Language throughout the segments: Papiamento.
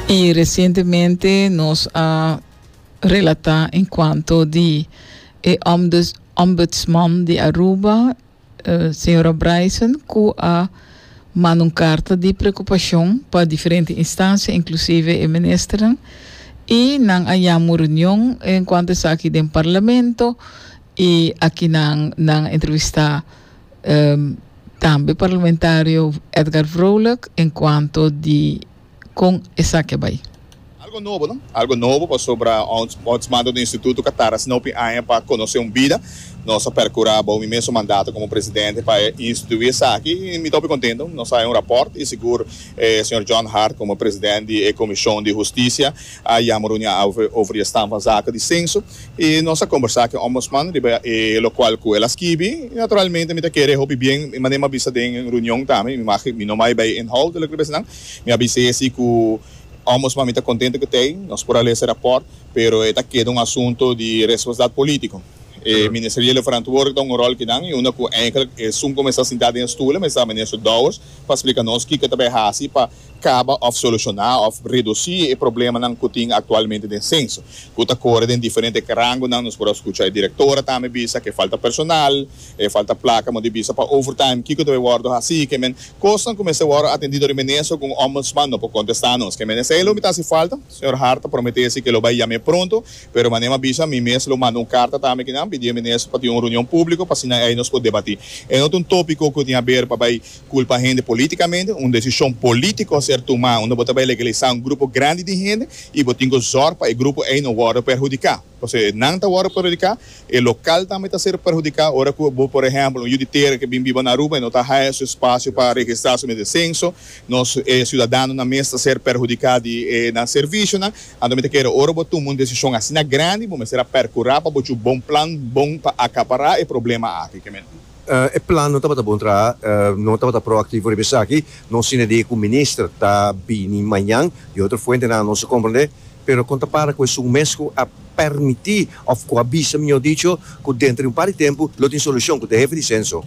Y recientemente nos a relata en cuanto di e ombuds, ombudsman di Aruba, eh, señora Bryson, cu a manda un carta di preocupacion pa diferente instancia, inclusive e ministernan, y nan a yama un reunion en cuanto esaki den Parlamento, y aki nan, nan a entrevista, Um tambe parlamentario Edgar Vrolijk en cuanto di con esaki a bay. Algo nobo no? Algo nobo pasobra ons ons manda un instituto ca tarda snopi aña pa conoce un bida. Nos a percura bao mi mesun mandato como presidente pa institui esaki y mi ta hopi contento. Nos a hay un rapport y sigur e señor John Hart como presidente di e comision di husticia a yama reunia over over di e stamp van zaken di censo. i nos a kombersá ku e Ombudsman riba e lokual ku el a skibi. Naturalmente mi ta kere hopi bien i manera mi a bisa den runion tambe, mi maki mi no bai bai inhoud di loke mi ta bisa nan, mi a bis'é si ku Ombudsman mi ta kontento ku t'ei, nos por a lesa e raport, pero e ta keda un asunto di responsabilidat polítiko. E ministeriel e ferantwoordig ta un rol kinan i unda ku eindelijk esun ku mester sintá den e stule mester Minister Dowers pa splika nos kiko ta bai hasi pa kaba òf solushoná òf redusí e problemanan ku tin aktualmente den senso ku ta kore den diferente rangonan. Nos por a skucha e direktora tambe bisa ke falta personal, e falta plaka mo di bisa pa overtime, kiko debe wòrdu hasí. Ke men kosnan ku mester wòrdu atendido riba e Minister ku un Ombudsman no por kontestá nos. Ke men esei lo mi ta hasi falta. Señor Hart a promete esei ke lo bai yam'é pronto, pero manera m'a bisa mi mes lo manda un karta tambe kinan pidié Minister pa tin un reunion públiko pa asina ei nos por debatí. E no ta un tópiko ku tin haber pa bai. Culpa hende politicamente, un decision politico ser tuma unda bo ta bay legaliza un grupo grandi di hende y bo tin cu zorg pa e grupo ey no wordo perhudica. Pasobra e nan ta wordo perhudica, e local tambe ta ser perhudica ora cu bo por ehemplo un yu di tera ke bin biba na Aruba y no ta haya su espacio pa registra su mes de censo, nos e ciudadanonan mes ta ser perhudica di e nan servicionan. Anto mi ta kere ora bo tuma un decision asina grandi bo mester a percura pa bo cu bon plan, bon pa acapara e problema aki. E plan no tabata bon traha. No tabata proactivo riba esaki. Nos tin idee cu minister ta bini mañan. Di otro fuentenan nos a comprende. Pero con ta para cu esun mes cu a permiti of cu a bisa, mijo dicho, cu denter di un par di tempo lo tin solucion, cu ta e hefe di censo?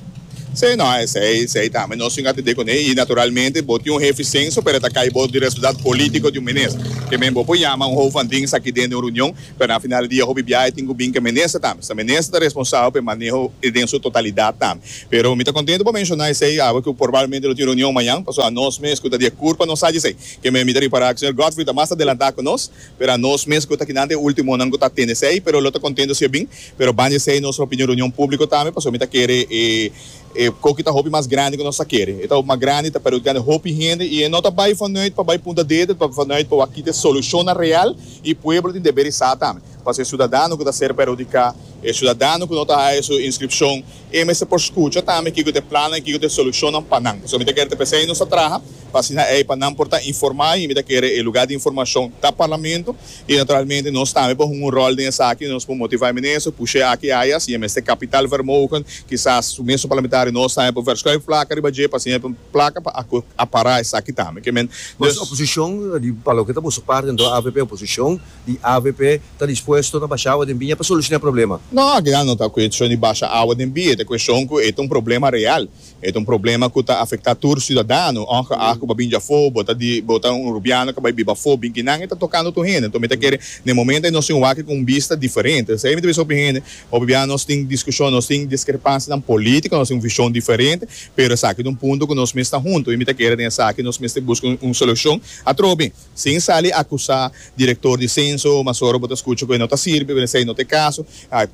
Sí, no, esey, esey tambe nos tin atende con ey. Y naturalmente bo tin un hefe di censo, pero ta cay bo di responsabilidad politico di un minister. Kemey bo por yama un hoofdvanding saki den di un reunion. Pero na final di dia hopi biahe tin cu bin cu e minister tambe. Sa minister ta responsabel pa e maneho e den su totalidad tambe. Pero mi ta contento pa menciona esey awe cu probablemente lo tin reunion mañan, pasobra a nos mes cu ta di e curpa nos sa djesey. Ke me mi ta ripara cu señor Godfrey ta mas adelanta cu nos, pero a nos mes cu ta kinan ta e ultimonan cu ta tende esey, pero lo ta contento si e bin. Pero ban djesey nos lo pidi un reunion publico tambe, pasobra mi ta kere e. E koki ta hopi mas grandi ku nos ta kere. E ta hopi mas grandi, ta perhudikando e hopi hende i e no ta bai vanuit pa bai punta dedo, ta bai vanuit pa wak kita e solushonnan real i pueblo tin deber di sa tambe. Pasobra e siudadano ku ta ser perhudiká, e siudadano ku no ta haña su inskripshon, e mester por skucha tambe kiko ta e plannan i kiko ta e solushonnan pa nan. Pasobra mi ta kere ta p'esei nos ta traha pa asina ei pa nan por ta informá i mi ta kere e lugá di informashon ta parlamento. I naturalmente nos tambe por hunga un rol den esaki, nos por motiva e minister, push'é aki ayas, i e mester kapitaalvermogen, kisas su mes su parlamentario, nos tambe por verschuif plaka riba dje, pa asina e tin plaka pa acara esaki tambe. Ke men, dus. Oposishon, di pa loke ta boso parti anto avp oposishon, di avp ta dispuesto ta basha awa den biña pa solushoná e problema? No, akinan no ta kueshon di basha awa den biña, e ta kueshon ku e ta un problema real, E ta un problema cu ta afecta tur ciudadano, ongeacht cu bo bini afo, bo ta di, bo ta un Urubiano cu bay biba afo, binkinan e ta tocando tur hende. Enton mi ta kere na e momento ey nos tin wak cu un bista diferente. Esey mi ta bisa hopi hende, hopi bia nos tin discusion, nos tin discrepancianan politico, nos tin un vision diferente, pero esaki ta un punto cu nos mes ta hunto y mi ta kere den esaki nos mester busca un solucion atrobe. Sin sali akusá direktor di senso, mas ora bo ta skucha ku e no ta sirbi, bo ta esei no ta e kaso.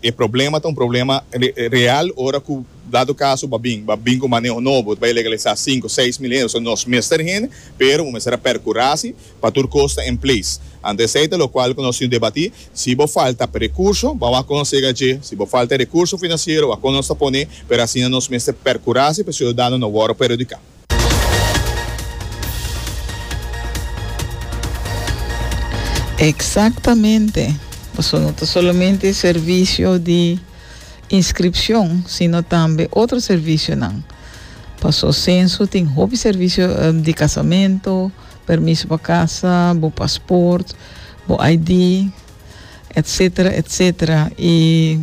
E problema ta un problema real ora ku dado kaso bo a bin, bo a bin ku un maneho nobo, bai legalisá sinku, seis mil hende. So nos mester hende, pero bo mester a perkurá si pa tur kos ta en ples. Ante esei ta lokual ku nos tin debatí. Si bo falta pa rekurso, bo a wak kon nos yega dje. Si bo falta e rekurso finansiero, wak kon nos ta pone. Pero asina nos mester perkurá si pa e siudadano no wòrdu perhudiká. Exactamente. Paso no ta solamente servicio di inscripcion, sino tambe otro servicionan. Paso censo tin hopi servicio eh, di casamento, permiso pa casa, bo paspoort, bo ID, etcetera, etcetera. Y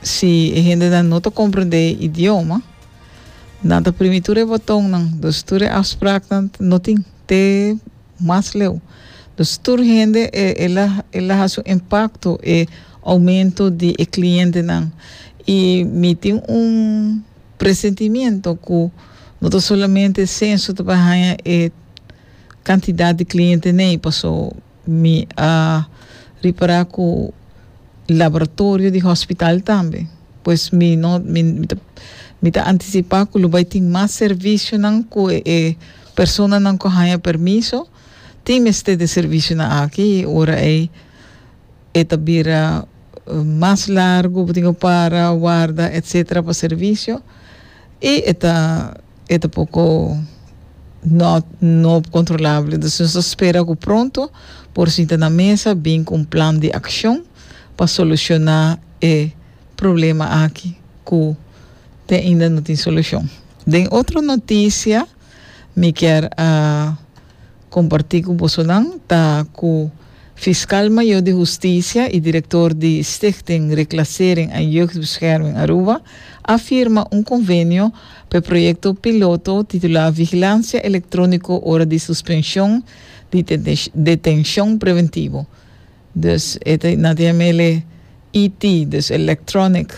si e hendenan no ta comprende e idioma, Nan ta primi tur e botonnan, dus tur e afspraknan no tin te mas leu. Dus tur hende e, e la, e la hasi un impakto e oumento di e klientenan. I mi tin un presentimiento ku no ta solamente senso ta por haña e kantidat di kliente nei, paso. Mi a ripará ku laboratorio di hospital tambe. Pues mi no mi mi ta mi ta antisipá ku lo bai tin mas servisionan ku e personanan ku a haña permiso tin mester di e servisionan aki i ora ei e ta bira mas largu bo tin ku para warda etsetera pa servisio i e ta E ta poco no no controlable, entonces nos ta spera cu pronto por sinta na mesa bin cu un plan di accion pa soluciona e problema aki cu te ainda no tin solucion. Den otro noticia mi kier a. Comparti cu bosonan ta cu Fiscal Mayor di Husticia y Director di Stichting Reclassering en Jeugdbescherming Aruba a firma un convenio pa e proyecto piloto titula Vigilancia Electronico ora di Suspension di Detencion Preventivo, Dus e ta na tin amele IT, dus electronic.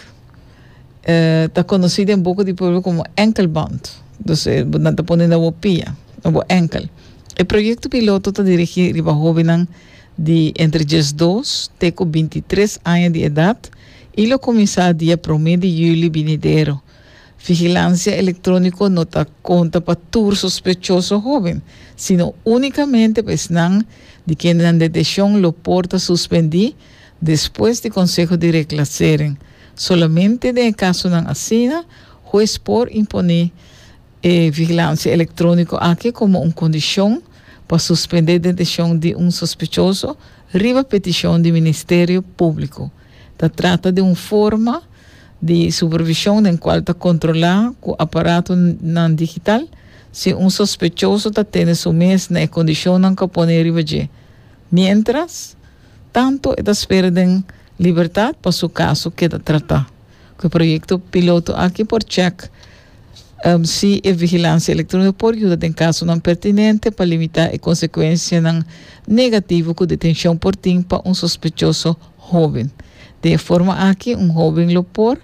E ta conoci den boca di pueblo como enkelband. Dus e nan ta pone na bo pia, na bo enkel. E proyecto piloto ta dirigi riba hobennan di entre diesdos te cu bintitres aña di edad y lo cuminsa dia prome di juli binidero. Vigilansia elektróniko no ta konta pa tur sospechoso hóben, sino únikamente pa esnan di kende nan deteshon lo por ta suspendí despues di konseho di reklasering. Solamente den e kasonan asina, hues por imponé e vigilansia elektróniko aki komo un kondishon pa suspendé deteshon di un sospechoso riba petishon di Ministerio Públiko. Ta trata di un forma di supervishon den kual ta kontrolá ku aparatonan digital si un sospechoso ta tene su mes na e kondishonnan ku a pone riba dje, miéntras tantu e ta spera den libertat pa su kaso keda tratá. Ku e proyekto piloto aki por chèk si e vigilansia elektróniko por yuda den kasonan pertinente pa limitá e konsekuensianan negativo ku detenshon por tin pa un sospechoso Hoben. Den e forma aki un hoben lo por,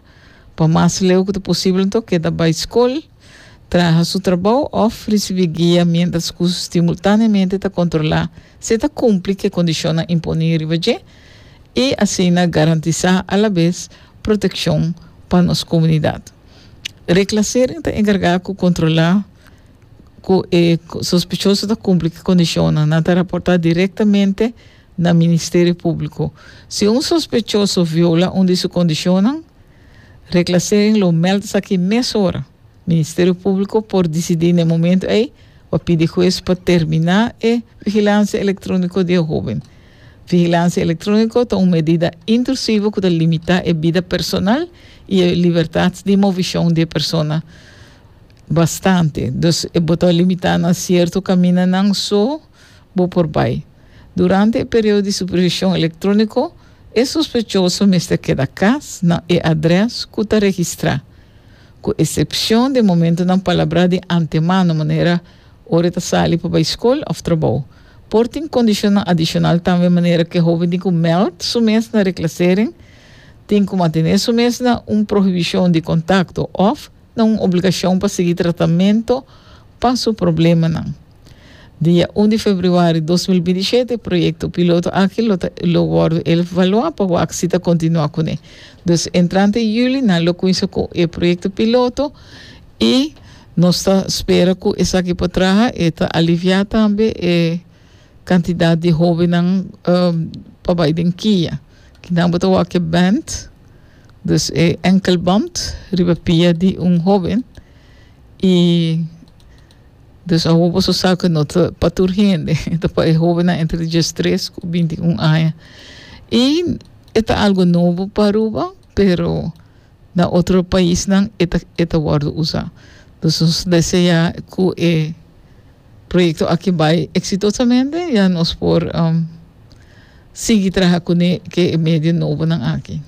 pa mas leu cu ta posibel anto, keda bay scol, traha su trabou of ricibi guia mientras cu stimultaneamente ta controla si e ta cumpli cu e condicionnan imponi riba dje y asina garantisa alabes proteccion pa nos comunidad. Reclassering ta encarga cu controla cu e sospechoso ta cumpli cu e condicionnan. Nan ta raporta directamente. na Ministerio Públiko. Si un sospechoso viola un di su kondishonnan, reklasering lo mèld esaki mesora. Ministerio Públiko por disidí n'e momentu ei pa pidi hues pa terminá e vigilansia elektróniko di e hóben. Vigilansia elektróniko ta un medida intrusivo ku ta limitá e bida personal i e libertat di movishon di e persona bastante. Dus e bo ta limitá na sierto kamindanan so bo por bai. Durante e periodo di supervision electronico, e sospechoso mester keda cas na e adres cu ta registra, cu excepcion den momento nan palabra di antemano, manera ora e ta sali pa bay scol of trabou. Por tin condicionnan adicional tambe manera cu e hoben tin cu meld su mes na reclasering, tin cu mantene su mes na un prohibition di contacto of na un obligacion pa sigui tratamento pa su problemanan. Dia un di februari dos mil binti shete, proyekto piloto aki lo ta lo wòrdu elvaluá pa wak si ta kontinuá kuné. Dus entrante yuli nan lo kuinsa ku e proyekto piloto i nos ta spera ku esaki por traha e ta aliviá tambe e kantidat di hóbennan pa bai den kia. Kinan bo ta wak e band, dus e enkelband, riba pia di un hóben i. Dus awo boso sa ku no ta pa tur hende, e ta pa e hobennan entre diestres ku bintiun aña. I e ta algu nobo pa Aruba, pero na otro paisnan e ta e ta wòrdu usa. Dus nos deseá ku e proyekto aki bai eksitosamente ya nos por sigui traha kuné ke e medio nobonan aki.